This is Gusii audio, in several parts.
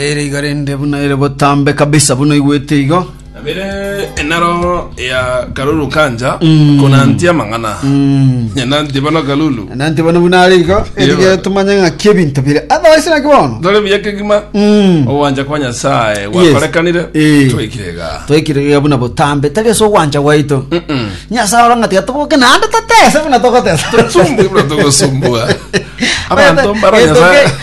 Ere iga rende buna ere botambe kabisa buna igwete igo. Abere enaro ya Kalulu Kanja konantia amang'ana. Nyananti bono Kalulu. Nanti bono buna are igo erige Yeba. tumanye ng'aki ebinto bire. Otherwise naki bono. Dore buya kegima. Mm. Ogwancha kwa Nyasaye gwakorekanire. Eh. Twekirega. Twekirega buna botambe tari ase ogwancha gwaito. Mm-mm. Nyasaye ora ng'ati atoboke naende totese buna togotesa. Tusumbwe buna togosumbwa. Abantu mbara Nyasaye.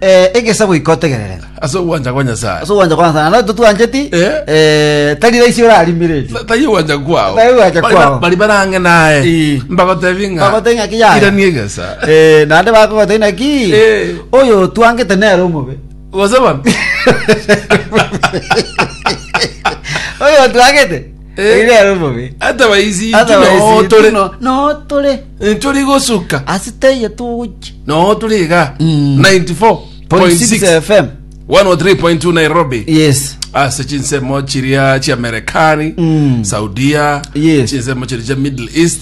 Eh, egesa goika otegerere. Ase ogwancha kwa Nyasaye. Ase ogwancha kwa Nyasaye. Naro totwancheti. Eh. Eh, tari raisi orarimire eti. Ta- Taiyo gwancha kwao. Taiyo gwancha Bari- kwao. Bari barange naye. Eh. Mbagotebi ng'a. Mbagotebi ng'a kiyaya. Ira ni egesa. Eh, nande bakogota inaki. Eh. Oyo twangete nero omobe. Gose bono. Oyo twangete. Eh, Iga ero bobe. atabaisi Ata intu baisi noo tore tuno, noo tore ntore gosuka ase taiyo togochia noo tore iga Mm. 94.6 94.6 fm 103.2 nairobi yes ase chinsemo chiria chiamerekani Mm. saudia Yes. chinsemo chiria chia middle east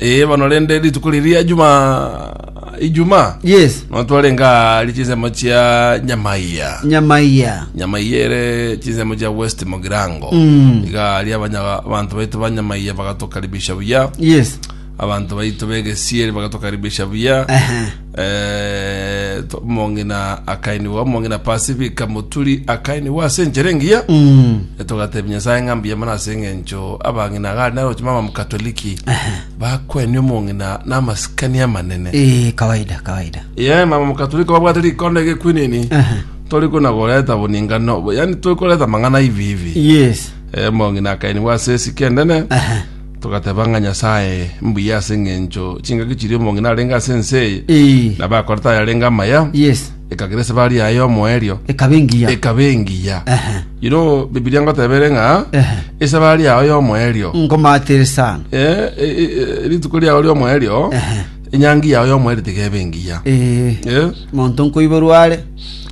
Ee bono rende rituko riria juma ijumaa yes no twarenge ari chinsemo chia nyamaiya nyamaiya nyamaiya ere chinsemo chia west mogirango Mm. iga ari abanya- abanto baitu ba nyamaiya bagatukaribisha buya yes abanto baitu begesieri bagatukaribisha buya Ehe. Eh, to- omong'ina akainigwa omong'ina pasifika moturi akainigwa ase enchera engiya togatebia nyasaye ng'a mbuya mono ase eng'encho abang'ina gari naroche mama mkatoliki bakweni omong'ina na amasikani amanene Eh, kawaida kawaida ye mama mkatoliki babwate rikondo egekwinini Aha. tori kuna goreta boningano yani tori koreta mang'ana hivi hivi yes Eh, omong'ina akainigwa ase esike enene Aha. Togateba ng'a Nyasae mbuya ase engencho chingaki chiria omong'ina arenge ase ense eye, Ee. na bakorete ayarenge amaya, Yes. ekagera esabari yaye y'omoerio Ekaba engiya. ekaba engiya. Ehe. Iro Bibilia ngoteba ere ng'a Ehe. esabari yao y'omoerio Nkomatere sana. Eh, eh, eh, rituko riao riomoerio Ehe. enyangi yao yomoerio tigebe engiya Ee. Eh, Monto nkoiborwa are.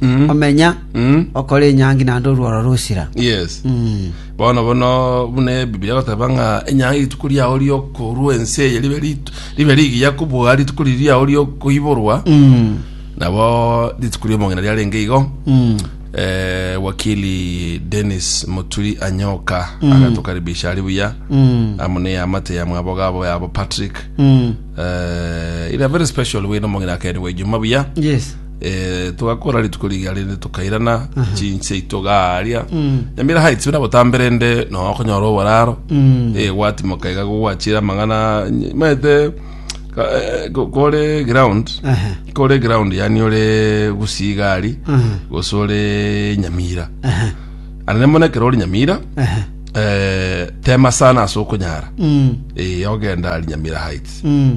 mm, Omenya. mm, Okore enyangi naende orworo rosira. yes Mm. Bono bono buna Ebibilia egoteba ng'a enyanga y'rituko riao ri'okorua ense eye ribe rit- ribe rigiya kobua rituko riri riao ri'okoiborwa nabo rituko ri'omong'ina riarenge igo Eh, wakili denis moturi anyoka agatokaribisha ari buya amo ne amate ya mwabo gabo yabo patrick Eh, ira very special wino omong'ina akerigwa ijuma buya yes Eh, togakora rituko riga rende tokairana chinsi yaito gaaria nyamira haitwe nabo tamberende no okonyora oboraro eh gwatimoka iga gwachira mang'ana ny- maete ka- eh, ko- kore ground Aha. kore ground yani ore gusigari Aha. gosore nyamira Aha. anene mona kero ori nyamira Aha. eh tema sana asokonyara Mm. eh ogenda ari nyamira heights Mm.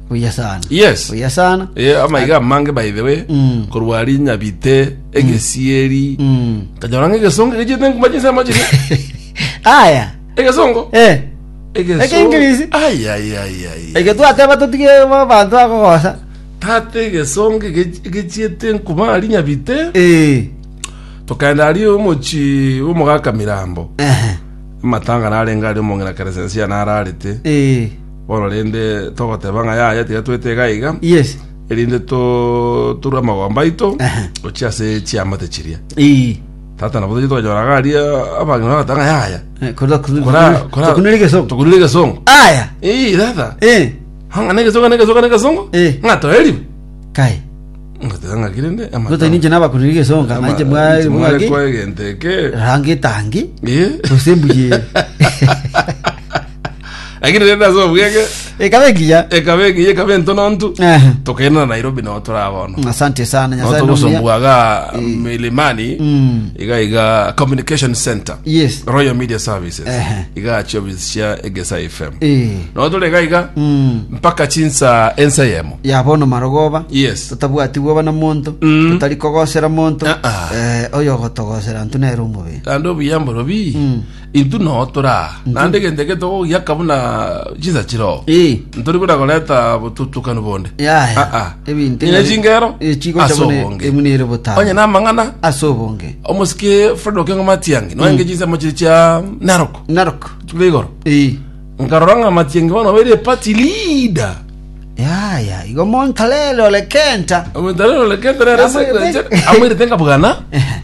buya sana Yes. buya sana Eh, amaiga amange by the way Mm. korwa rinyabite egesieri Mm. kanyora ng'a egesongo egechete nguma chinsemo chiri aya egesongo eh Egesongo. Ekengirisi. Ai, ai, ai, ai. eke twateba totige bo- bantu akogosa tata egesongo ege- egechiete nkuma rinyabite eh tokaenda ari omochi omogaka mirambo ehe matanga narenga ari omong'ina keresensia nararete eh Bono rende togoteba ng'a yaya, tiga twetega aiga, yes erinde toturwe amagomba aito Aha. gochia ase chiamate chiria. ii Tata nabo tochia twanyora iga aria abang'ina bagoteba ng'a yaya, Eh, kora kora Kora- kora- tukunire gesongo tukunire egesongo. aya Ii, tata, eh hanga na egesongo, na egesongo, na egesongo, Eh. ng'a toeriwe. kai Ngoteba ng'a ki rende, amata- gotani nje nabakunire gesongo ama- nanje mwari mwari mwaki kwa egento eke. rangi tangi Ii. gose mbuye lakini rende ase obwenge ekabe engiya ekaba egiye ekaba entonontu Aha. tokairana nairobi nao turabono asante sana nao nyasaye nomuya togosombuaga milimani Mm. iga iga communication center yes royal media services Ehe. iga chiobisi cia egesa fm Eh. nao tore iga iga Mm. mpaka chinsa ensa yemo yabono marogoba yes totabwatigwa bana monto Mm. totari kogosera monto Ah, ah. Eh, oyo ogotogosera ntu nere omobere ande obuyamboro bi Mm. Intwe noo tore aa, naende egento eke togogiaka buna chinsa chiroo. Eh. Ntori buna koreta botutukanu bonde. Yaya. Ah, ah. Ebinto Ng'ina chingero Eh, chigocha ase buna obonge. emuna ere botano. Onye namang'ana Ase obonge. omosike Fred Okengo Matiangi noenge chinsemo chiri chia Narok Narok. chikure igoro Eh. nkarora ng'a Matiangi bono obeire party leader Yaya. Igo montalele ole kenta. omentarero lekete Amwirete. amwirete nkabugana Ehe.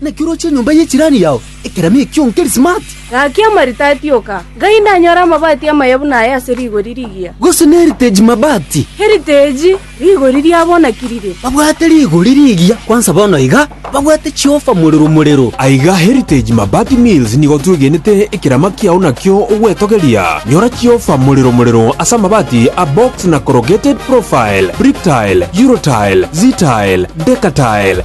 Naki oroche enyomba ye chirani yao ekeremo ekio nkerismati? Gaki amaritati oka, ngai ndanyore amabati amaya buna aya ase rigori rigiya. Gose neriteji mabati? Eriteji, rigori riabonakirire. Babwate rigori rigiya kwansa bono iga, babwate chiofa morero morero. Aiga Heritage Mabati Mills nigo twegenete ekerama kiao nakio ogwetogeria. Nyora chiofa morero morero ase amabati a box na corrugated profile, bricktile, eurotile, ztile, decatile,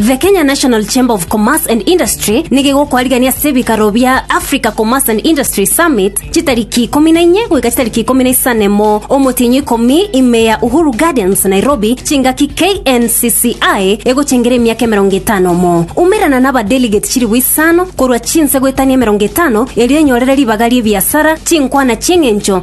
The Kenya National Chamber of Commerce and Industry nigigokoarigania ase ebikaro bia Africa Commerce and Industry Summit chitariki ikomi na inye goika chitariki ikomi na isanemo omotienyi ikomi ime ya Uhuru Gardens Nairobi chingaki KNCCI egochengera emiaka emerongo etano mo umerana na abadelegate chilifu isano korwa chinse goetania emerongo etano erio enyorere ribaga riebiasara chinkwana chieng'encho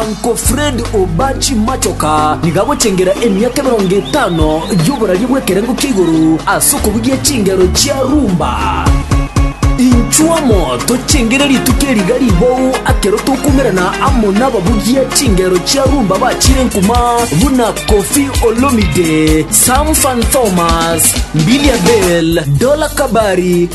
Uncle Fred Obachi Machoka nigo agochengera emiaka emerongo etano y'oboraria bw'ekerengo kia igoro ase okobugia chingero chia rumba. Inchuo amo tochengere rituko eri iga ribao akero tokoumerana amo nababugia chingero chia rumba bachire nkuma buna Koffi Olomide, Sam Fan Thomas, Mbilia Bel, Dola Kabari,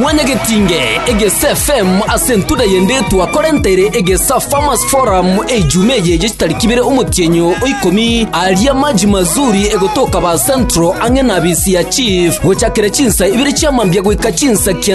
Mwanyagetinge egesa FM ase entuda y'endetwa korentere egesa Farmers Forum ejuma eye ye chitariki ibere omotienyo o ikomi aria maji mazuri egotoka ba Central ang'e na bisi ya Chief gochakera chinsa ibere chia mambia goika chinsa kianda